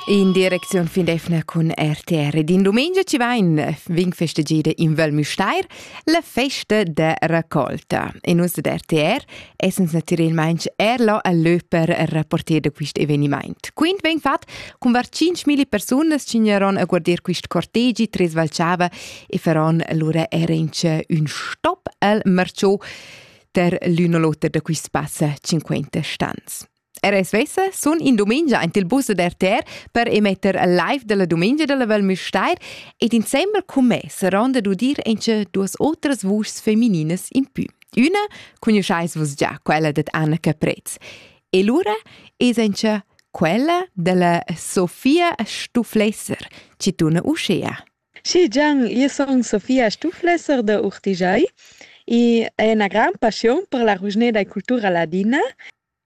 In direcziun fin d'efna cun RTR ed in dumengia ci vain vin festegida in Val Müstair la festa da raccolta. E nus da RTR essens natüralmaing er là a lö per rapporter da quist evenimaint. Quint vegn fat cun var 5.000 persunas c'ignaron a guardir quist cortegi Tres Valchava e faron lura era in ün stop al Marciò ter l'üna l'oter da quist passa 50 stans. Era svessa sun in dumengia aint il bus da RTR per emetter live della dumengia della Val Müstair ed insembel cun me saronda d'udir ince duas otras vuschs femininas in pü. Üna conosceis vus già, quella dad Anna Caprez. E lura es ince quella della Sofia Stuflesser, ci tuna uschea. Sì, Gian, io son Sofia Stuflesser da Urtigiai e è una gran passione per la rugneda e cultura ladina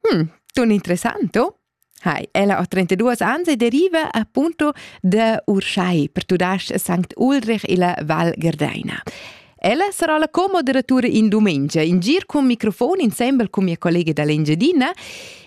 Hm, ton interessant, oh. Hai, ella ha 32 ans e deriva appunto da Urschai per tudasc Sankt Ulrich illa Val Gerdeina. Ella sarà la co-moderatura in dumengia, in gir cun microfon insembel cun mia collega dall'Engiadina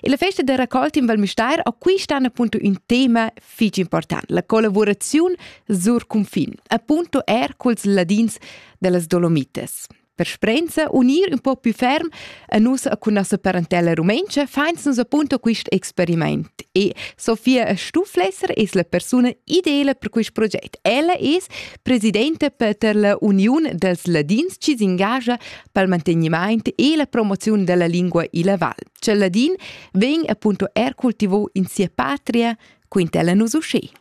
e la festa da raccolta in Val Müstair acquistan appunto un tema fich important, la collaboraziun sur cunfin, appunto er culs ladins dellas Dolomites. Per sprenza unir un po più ferm a nus cun nossa parentella rumentscha fains nus appunto quist experiment e Sofia Stuflesser es la persuna ideala per quist proget. Ella es presidenta per la Uniun dels Ladins chi s'engagia pel mantegnimaint e la promoziun della lingua illa val. Cel ladin vegn appunto er cultivò in sia patria, quintella nus uscè.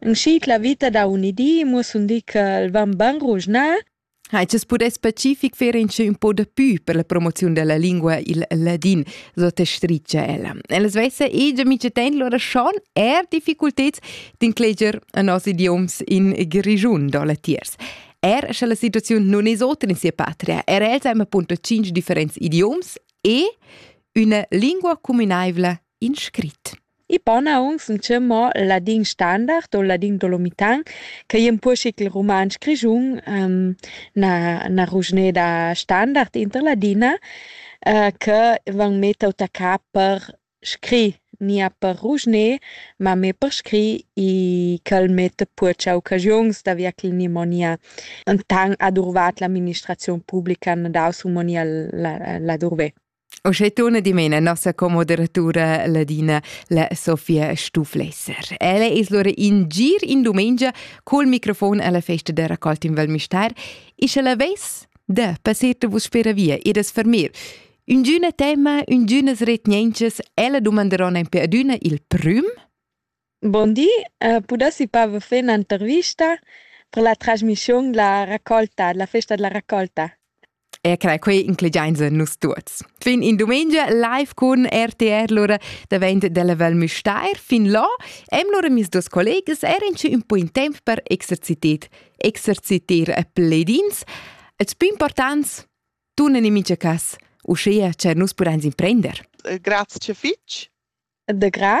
In schiit la vita da un di muoss'un di ch'el van bain ruschnà. Hai tschess pudais specific fer inchè ün po da pü per la promoziun della lingua il ladin, so te stricia ella. Ella svessa egia mice ten lura schon eir difficulteds d'incleger a nos idioms in Grischun do latiers. Er sche la situaziun non es otra in sia patria, er els hem appunto cinc differents idioms e üna lingua cuminaivla in scrit. I pona aunc sun cheu mo ladin standard o ladin dolomitan ch'ei empuschi ch'il rumantsch grischun ehm, na na ruschneda standard inter ladina che van mett auta ca per scrir, ni er per ruschner, ma mê per scrir i ch'el metta pur tscheu occasiuns da via ch'el ni mo nia enten adurvat l'administraziun publica, na daus u mo nia la la durver. Uschè turna dimena nossa commoderatura ladina la Sofia Stuflesser. Ella es lura in gir in dumengia col microfon alla festa da raccolta in Val Mistar e sche la ves da passer te vus per via e das fermir Üngüna tema, üngünas retgnenchas, ella dumanderona in pe adüna il prüm? Bon di, pudessi pas vous faire un'intervista per la trasmissiun La raccolta, la festa della raccolta. E crai, quei inclegiainsa nus tuots. Fin in dumengia live cun RTR lura davent della Val Müstair. Fin là hem lura mis dos collegas eran ci un po in temp per exercitet, exercitir pledins. Et più importants, turnen in mincha cas, uschia che nus pudein imprender. Grazie fitch. De gra.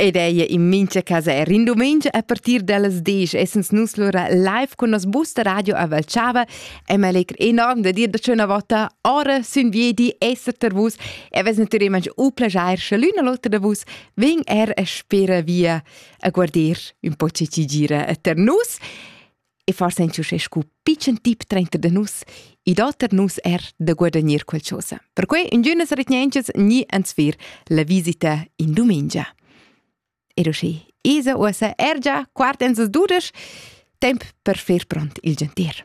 Ed ei in mincha casa er in domenica a partir dallas 10 essens nus lura live con nos bus da radio a Valchava e me legr enorm da dir da schöna vota ora sün viedi esser ter vus e ves natüralment u plagiar sche l'una l'otra da vus vegn er a spera via a guarder un po che ci gira a ter nus e far senza uschè scu pitschen tip trenter da nus, i do ter nus er da guadagnir qualchosa. Perquai ingünas retgnentschas ni ans vir la visita in dumengia. E uschi, isa uossa er già quart ens dudesch, temp per fer pront il gentir.